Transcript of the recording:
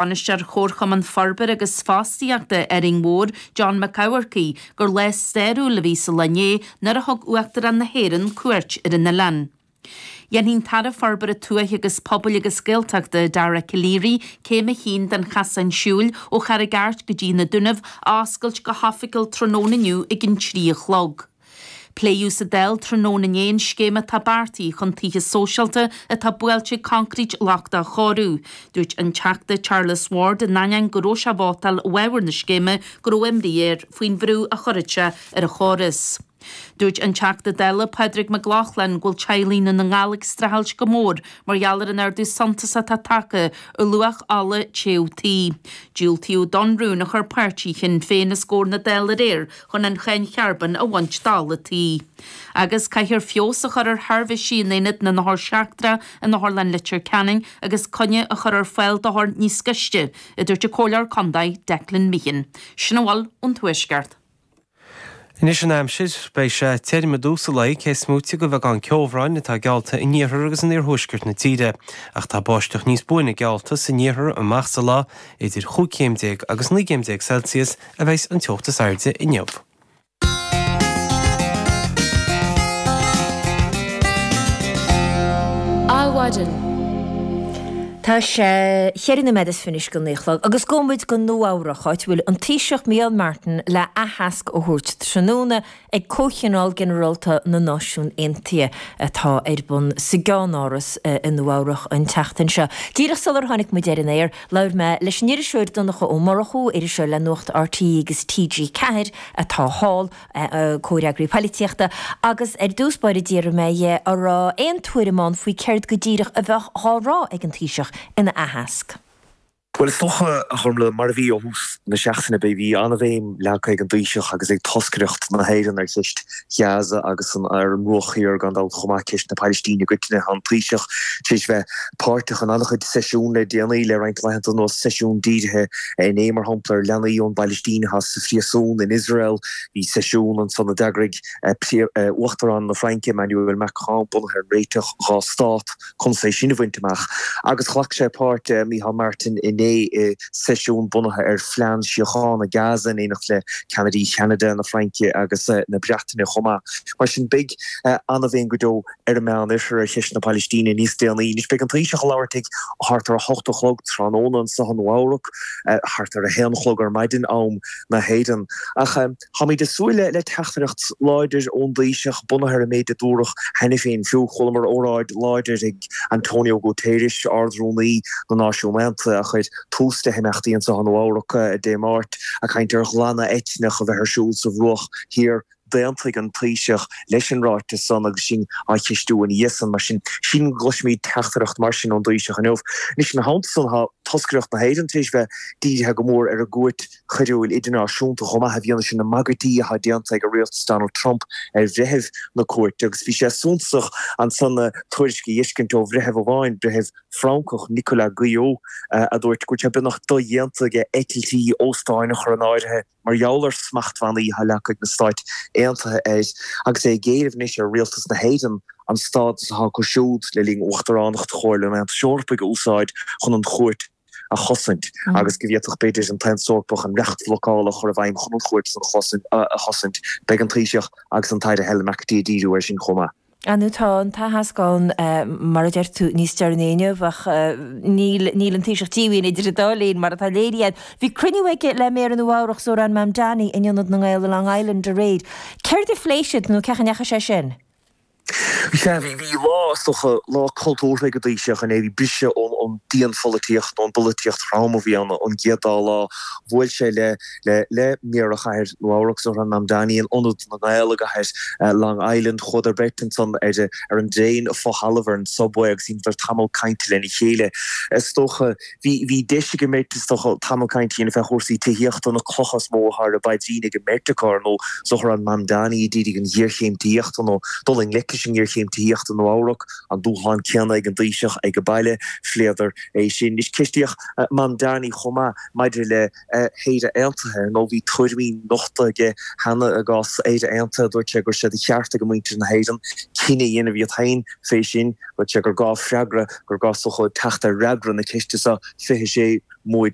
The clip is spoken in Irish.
Bainisteoir Chomharchumann Forbartha agus Fostaíochta Árainn Mhór, John Mac Eamharcaigh, gur lá stairiúil a bhí sa lá inné nuair a thug Uachtarán na hÉireann cuairt ar an oileán. Déanfaidh an tAire Forbartha Tuaithe agus Pobail agus Gaeltachta, Dara Calleary, céim a haon den chasán siúil ó Charraig Airt go dtí na Dúnaibh a oscailt go hoifigiúil tráthnóna inniu ag an trí a chlog. Pléadh sa Dáil tráthnóna inné an scéim atá beartaithe chun tithe sóisialta atá buailte ag concrete lochtach a chóiriú. Dúirt an Teachta Charles Ward in ainneoin go raibh sé ag vótáil i bhfabhar na scéime go raibh imní air faoin bhrú a chuirfeadh sé ar an chóras. Dúirt an Teachta Dála Pádraig Mac Lochlainn go bhfuil teaghlaigh i nDún na nGall ag streachailt go mór mar gheall ar an ardú suntasach atá tagtha ar luach ola téite tí. Diúltaíodh don rún a chuir páirtí Shinn Féin os gcomhair na Dála aréir chun an cháin charbóin a bhaint d'ola tí, agus caithfear feabhas a chur ar sheirbhísí in aonad na n-othar seachtracha in Otharlann Leitir Ceanainn agus coinne a chur ar fáil d'othair níos gaiste, a dúirt an Comhairleoir Contae, Declan Meehan. Sin a bhfuil ón Tuaisceart. Anois an aimsir. Beidh sé tirm i dtús an lae, cé is moite de bheagán ceobhráin atá geallta in iarthar agus in iarthuaisceart na tíre, ach tá báisteach níos buaine geallta san iarthar amach sa lá, idir chúig chéim déag agus naoi gcéim déag Celsius a bheas an teocht is airde inniu. Adhmhaidin. Tá sé cheithre noiméad is fiche go naoi a chlog agus gabhfaidh muid go Nua-Eabhrac, áit a bhfuil an Taoiseach Micheál Martin le aitheasc a thabhairt tráthnóna ag Comhthionól Ginearálta na Náisiún Aontaithe atá ar bun sa gCeannáras i Nua-Eabhrac an tseachtain seo. Díreach sular tháinig muid ar an aer, labhair mé leis an iriseoir Donncha Ó Murchú, iriseoir le Nuacht RTÉ agus TG4 atá thall, comhfhreagraí poilitíochta, agus ar dtús báire d'fhiafraigh mé dhe an raibh aon tuairim againn faoi céard go díreach a bheadh dhá rá ag an Taoiseach ina aitheasc. Bhuel, is dócha, a Ghormfhlaith, mar a bhí ó thús na seachtaine, bhí an-bhéim leagtha ag an dTaoiseach agus ag toscaireacht na hÉireann ar cheist Ghaza agus ar an mBruach Thiar, gan dabht, chomh maith, ceist na Pailistíne i gcoitinne. Tá an Taoiseach tar éis bheith páirteach in an-chuid seisiún le déanaí, le roinnt laethanta anuas, seisiún dírithe inné, mar shampla, ar leanaí ón bPailistín atá sa phríosún in Iosrael. Bhí seisiún ansan a d'eagraigh Uachtarán na Fraince, Emmanuel Macron, bunaithe ar an réiteach dhá stát. conas é sin a bhaint amach agus ghlac sé páirt, Micheál Martin, inné i seisiún bunaithe ar phlean síochána Gaza in éineacht le ceannairí Cheanada, na Fraince agus na Breataine chomh maith. Mar sin beidh ana-bhéim go deo ar an Meán Oirthear ar cheist na Pailistíne níos déanaí anois. Beidh an Taoiseach ag labhairt ag thart ar a hocht a chlog tráthnóna anseo i Nua Eabhrac, thart ar a haon a chlog ar maidin am na hÉireann. Ach. Táimid ag súil le le teachtaireacht láidir ón dTaoiseach bunaithe ar an méid a dúradh cheana féin fiú. Chualamar óráid láidir ag Antonio Guterres, Ard-Rúnaí na Náisiún Aontaithe, a chuir tús le himeachtaí anseo i Nua Eabhrac Dé Máirt, ag caint ar ghlanadh eitneach a bheith ar siúl sa Bhruach Thiar. D'aontaigh an Taoiseach leis an ráiteas san agus sinn á cheistiú ina dhiaidh san. Mar sin seans, go gcloisimid teachtaireacht mar sin ón dTaoiseach inniu. Anois, ina theannta san, tá toscaireacht na hÉireann tar éis bheith dírithe go mór ar an gCúirt. choiriúil idirnáisiúnta chomh maith i bhfianaise na mbagairtí atá déanta ag rialtas Donald Trump ar bhreithiúna na cúirte agus bhí sé suntasach anso na tuairiscí a fheiscint ó bhreitheamh amháin, breitheamh Francach, Nicolas Guillou, a dúirt go bhfuil sé beagnach dodhéanta aige eitiltí, óstáin a chur in áirithe mar gheall ar smachtbhannaí atá leagtha ag na Stáit Aontaithe air agus é ag éileamh anois ar rialtas na hÉireann an stádas atá acu siúd le linn uachtaránacht Chomhairle an Aontais Eorpaigh a úsáid chun an chúirt a chosaint agus go bhféadfadh, b'fhéidir, an tAontas Eorpach an reacht blocála a chur i bhfeidhm chun an Chúirt a chosaint. Beidh an Taoiseach agus an tAire Helen McEntee ag díriú air sin chomh maith. Anois, tá an t-aitheasc ann, mar a deir tú, níos deireanaí inniu ach níl an Taoiseach díomhaoin idir an dá linn, mar atá léirithe. Bhí cruinniú aige le Méara Nua-Eabhrac Zohran Mamdani in Ionad na nGael i Long Island aréir. Céard a phléigh siad nó cén chaoi a ndeachaigh sé sin? Sea, bhí, bhí lá, is dócha, lá cultúrtha ag an dTaoiseach inné. Bhí briseadh ón dianpholaitíocht, ón bpolaitíocht throm a bhí ann an chéad dá lá. Bhuail sé le le Méara Chathair Nua-Eabhrac, Zohran Mamdani, in Ionad na nGael i gcathair Long Island. Chuadar beirt ansan síos ar an dtraein fo-thalamh, ar an Subway, agus dheineadar tamall cainte lena chéile. Is dócha. Bhí, bhí deis ag an mbeirt is dócha tamall cainte a dhéanamh ar chúrsaí tithíochta, na clocha is mó atá ar a bpaidrín ag an mbeirt acu, ar ndóigh, Zohran Mamdani i dtaobh an ghéarchéim tithíochta, nó dul i ngleic leis an ngéarchéim tithíochta, i Nua-Eabhrac, an dúshlán céanna ag an dTaoiseach age baile, phléadar é sin. Anois, ceistíodh Mamdani chomh maith maidir le. hÉire Aontaithe, nó bhí tuairimí nochta aige cheana i gcás Éire Aontaithe, dúirt sé go bhfuil sé de cheart ag muintir na hÉireann cinneadh a dhéanamh iad féin fé sin. Dúirt sé gur gá freagra, gur gá is dócha teacht ar fhreagra na ceiste seo fé 2030.